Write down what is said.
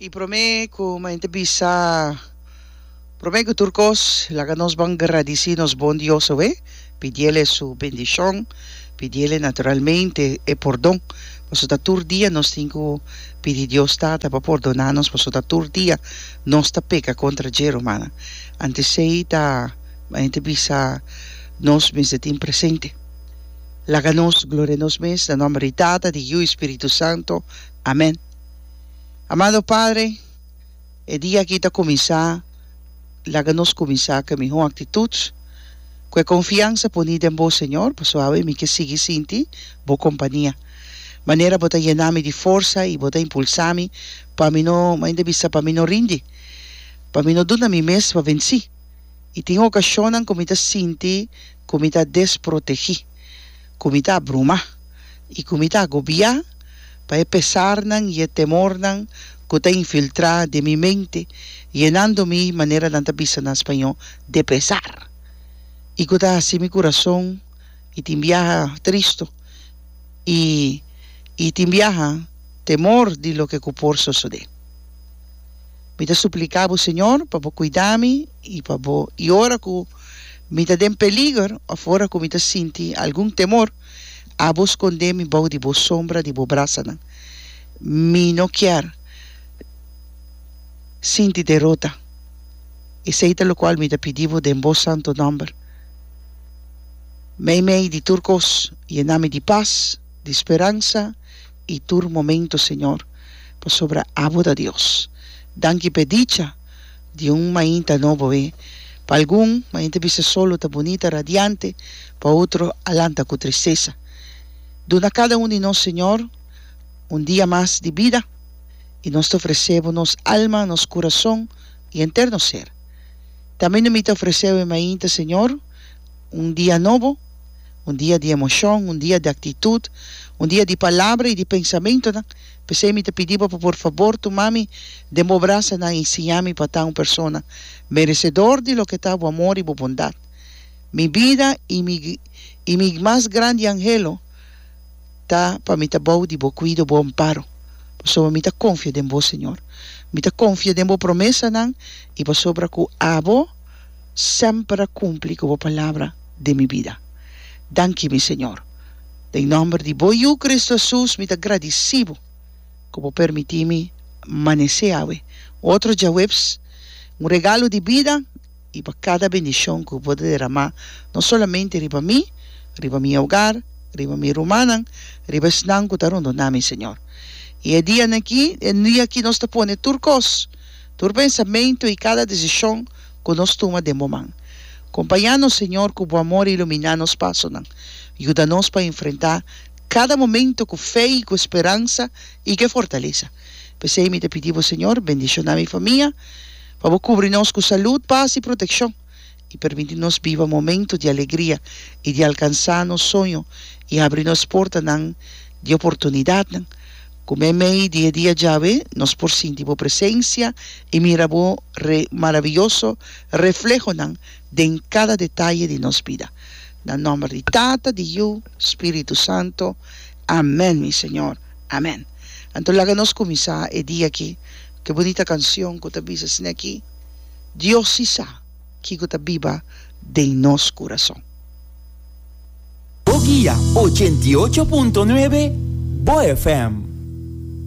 Y prome cu mayen ta bisa, prome cu tur cos laga nos ban gradici nos bon Dios awe, pidiel e su bendicion, pidiel naturalmente e pordon, pasobra ta tur dia nos tin cu pidi Dios Tata pa pordona nos pasobra ta tur dia nos ta peca contra dje, romana. Anto esey ta mayen ta bisa nos mester tin presente. Laga nos gloria nos mes na nomber di Tata, di Yiu i Spiritu Santo. Amen. Amado Padre, e dia aki ta kuminsá, laga nos kuminsá ku e mihó aktitut, ku e konfiansa puní den Bo, Señor, pasobra awe mi ke sigui sinti Bo kompania. Manera Bo ta yena mi di forsa i Bo ta impulsá mi pa mi no, mainda bisa, pa mi no rindi, pa mi no duna mi mes pa vensí. I tin okashonnan ku mi ta sinti ku mi ta desprotegí, ku mi ta abrumá i ku mi ta agobiá pa e pesarnan i e temornan ku ta infiltrá den mi mente, yenando mi, manera nan ta bisa na spañó, de pesar, i ku ta hasi mi kurason i tin biaha tristu i i tin biaha temor di loke ku por sosodé. Mi ta supliká Bo, Señor, pa Bo kuidá mi i pa Bo, i ora ku. Mi ta den peliger of ora ku mi ta sinti algun temor, abo skondé mi bou di bo sombra di bo brasanan. Mi no kier sinti derota. Esei ta lokual mi ta pidi bo den bo santu nòmber. Meimei di tur kos, yena mi di pas, di speransa i tur momentu, Señor, pasobra abo ta Dios. Danki p'e dicha. di un mainta nobo e. Pa algun, mainta bisa solo ta bunita, radiante, pa otro a lanta ku tristesa. Duna kada un di nos, Señor, un dia mas di bida, i nos ta ofresé Bo nos alma, nos kurason i enter nos ser. Tambe no mi ta ofreseu e mainta, Señor, un dia nobo, un dia di emoshon, un dia di aktitut, un dia di palabra i di pensamentunan, P'esei mi ta pidi bo pa por fabor tuma mi den bo brasanan i siña mi pa ta un persona meresedor di loke ta bo amor i bo bondat. Mi bida i mi i mi mas grandi angelo ta pa mi ta bou di bo kuido, bo amparo, pasobra mi ta konfia den bo, Señor. Mi ta konfia den bo promesanan i pasobra ku abo semper a kumpli ku bo palabra den mi bida. Danki, mi Señor. Den nomber di Bo Yu Cristo Hesus mi ta gradisí Bo ku Bo permití mi manesé awe otro djaweps, un regalo di bida i pa kada bendishon ku Bo ta deramá no solamente riba mi, riba mi ogar, riba mi rumannan, riba esnan ku ta rondona mi, Señor. I e dianan aki, e dia aki nos ta pone tur kos, tur pensamentu i kada desishon, ku nos tuma den bo man. Kompañános, Señor, ku bo amor a iluminá nos pasonan. Yuda nos pa enfrentá kada momentu ku fe i ku speransa i ku e fortalesa. P'esei mi ta pidi bo, Señor, bendishoná mi famia, pa bo kubri nos ku salud, pas i protekshon, i permití nos biba momentu di alegria i di alkansá nos soño i abri nos portanan di oportunidatnan. Ku me mei di e dia djawe nos por sinti Bo presensia i mira Bo maravioso reflehonan den kada detaye di nos bida. Na nòmber di Tata, di Yu, Spiritu Santo. Amèn, mi Señor. Amèn. Anto laga nos kuminsá e dia aki ku e bunita kanshon ku ta bisa asina aki, Dios si sa kiko ta biba den nos kurason. Bo guia ochenta i ocho punto nuebe, bo FM.